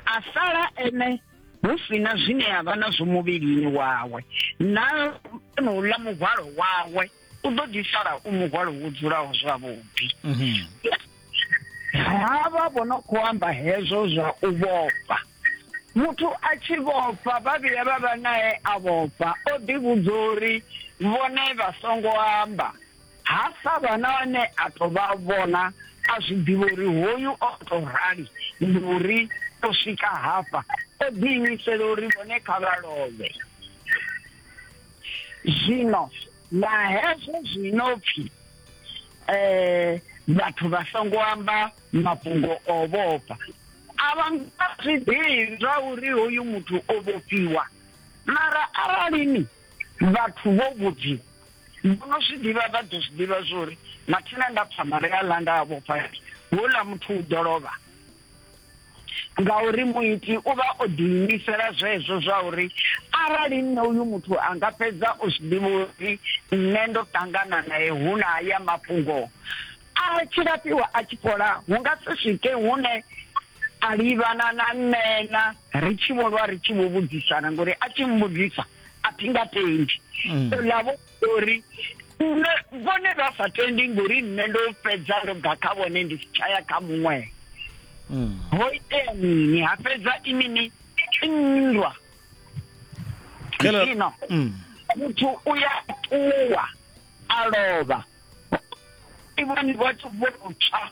a sala ene hu sina zwine a vha nazwo muvhilini wawe na nouḽa muhwalo wawe u ḓo ḓi sala u muhwalo wo dzulaho zwavhuḓi mhm. ha vha vho no khou amba hezwo zwa u vhofha muthu a tshi vhofha vha vhuya vha vha nae a vhofha o ḓivhudza uri vhone vha songo amba Ha sa vha na ane a tou vha vhona, a zwi ḓivha uri hoyu o tou rali ndi uri o swika hafha o ḓiimisela uri vhone kha vha lovhe. Zwino na hezwo zwi no pfi um vhathu vha songo amba mafhungo o vhofha a vha nga zwi ḓivhi zwa uri hoyu muthu o vhofhiwa mara aralini vhathu vho vhudziwa Vho no zwi ḓivha vha ḓo zwi ḓivha zwa uri mathina nda pfa mare a ḽa nda a vhofha ri houḽa muthu u ḓo lovha ngauri muiti u vha o ḓiimisela zwezwo zwa uri arali nṋe uyu muthu a nga fhedza o zwi ḓivha uri nṋe ndo ṱangana nae hu na haya mafhungo a tshi lafhiwa a tshi fhola hu nga si swike hune a livhana na nṋena ri tshi vho lwa ri tshi vho vhudzisana ngori a tshi mbudzisa a thi nga tendi mm. ola vho uri nṋe vhone vha sa tendi ngori nṋe ndo fhedza ndo bva kha vhone ndi si tshaya kha muṅwe mm. ho itea mini ha fhedza i mini nndwa ino mm. muthu u ya ṱuwa a lovha ivhani vhathu vho tsha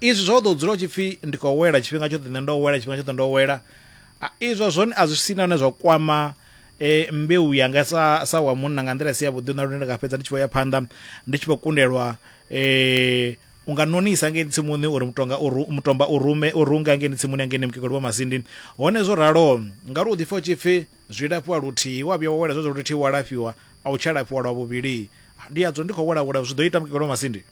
Izwi zwa u ḓo dzula u tshi pfi ndi khou wela tshifhinga tshoṱhe nṋe ndo wela tshifhinga tshoṱhe ndo wela izwo zwone a zwi si na hune zwa kwama mbeu yanga sa sa wa munna nga nḓila i si ya vhuḓi na lune ndi nga fhedza ndi tshi vho ya phanḓa ndi tshi vho kundelwa u nga nonisa ngei tsimuni uri mutonga u mutomba u rume u runga ngei tsimuni ngei mukegulu wa masindi hone zwo ralo ngauri u ḓifha u tshi pfi zwi lafhiwa luthihi wa vhuya wa wela zwezwo luthihi wa lafhiwa a u tsha lafhiwa lwa vhuvhili ndi yadzo ndi khou wela wela zwi ḓo ita mukegulu wa masindi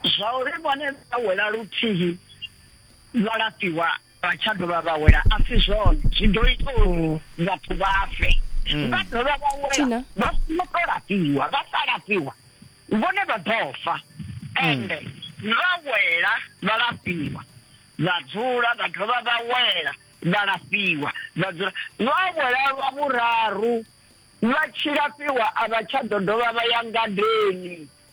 Zwauri vhone vha wela luthihi vha lafhiwa vha tsha dovha vha wela a si zwone, zwi ḓo ita uri vhathu vha fe. Mm. Vha dovha vha wela vha songo tou lafhiwa, vha sa lafhiwa vhone vha ḓo fa. Mm. Ende vha wela vha lafhiwa vha dzula vha dovha vha wela vha lafhiwa vha dzula vha wela lwa vhuraru vha tshi lafhiwa a vha tsha ḓo dovha vha ya ngadeni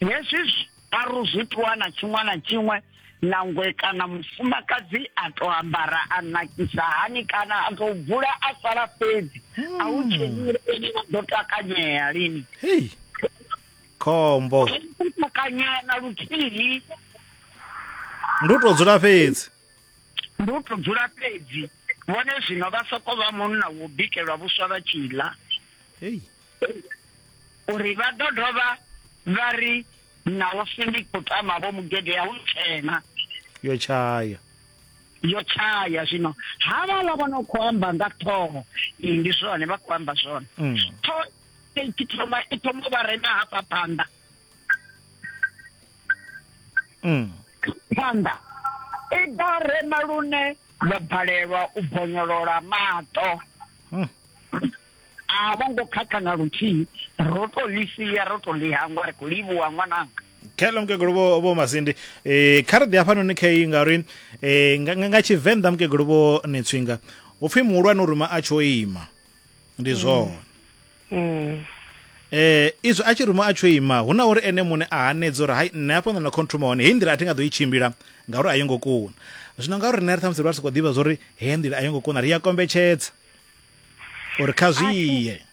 Hezwi zwiaru zwi ṱuwa na tshiṅwe na tshiṅwe nangwe kana mufumakadzi a to ambara a nakisa hani kana a to bvula a sala fhedzi a hu hmm. tshenyele ene a ḓo takanyea lini khombo takanyea na luthihi ndi u to dzula fhedzi ndi u to dzula fhedzi vhone zwino vha soko vha munna wo bikelwa vhuswa vha tshi ḽa uri vha ḓo dovha vha ri na u pfi ndi khou tama vho mugede ya u tshena yo tshaya yo tshaya zwino havhala vha no khou amba nga ṱhoho ndi zwone vha khou amba zwone mm. ṱhoho i thoma i thoma vha rema hafha phanḓa mm. phanḓa i ḓa rema lune vha balelwa u bonyolola maṱo mm. a vho ngo khakha na luthihi ro to ḽi sia ro to ḽi hangwa ri khou livhuwa ṅwananga khelo mukegulu vho vho masindi eh kha ri ḓi hafhanoni kha iyi ngauri eh nga nga- nga tshivenḓa mukegulu vho netswinga upfi muhulwane u ruma a tsho ima ndi zwone Mm. eh izwi a tshi ruma a tsho ima hu na uri ene muṋe a hanedza uri hai nṋe hafha nda na khontruma hone heyi nḓila a thi nga ḓo i tshimbila ngauri a yo ngo kuna zwino ngauri riṋe ri ṱhamusi ri vha ri si khou ḓivha zwa uri Hei nḓila a yo ngo kuna, ri a kombetshedza uri kha zwi ye.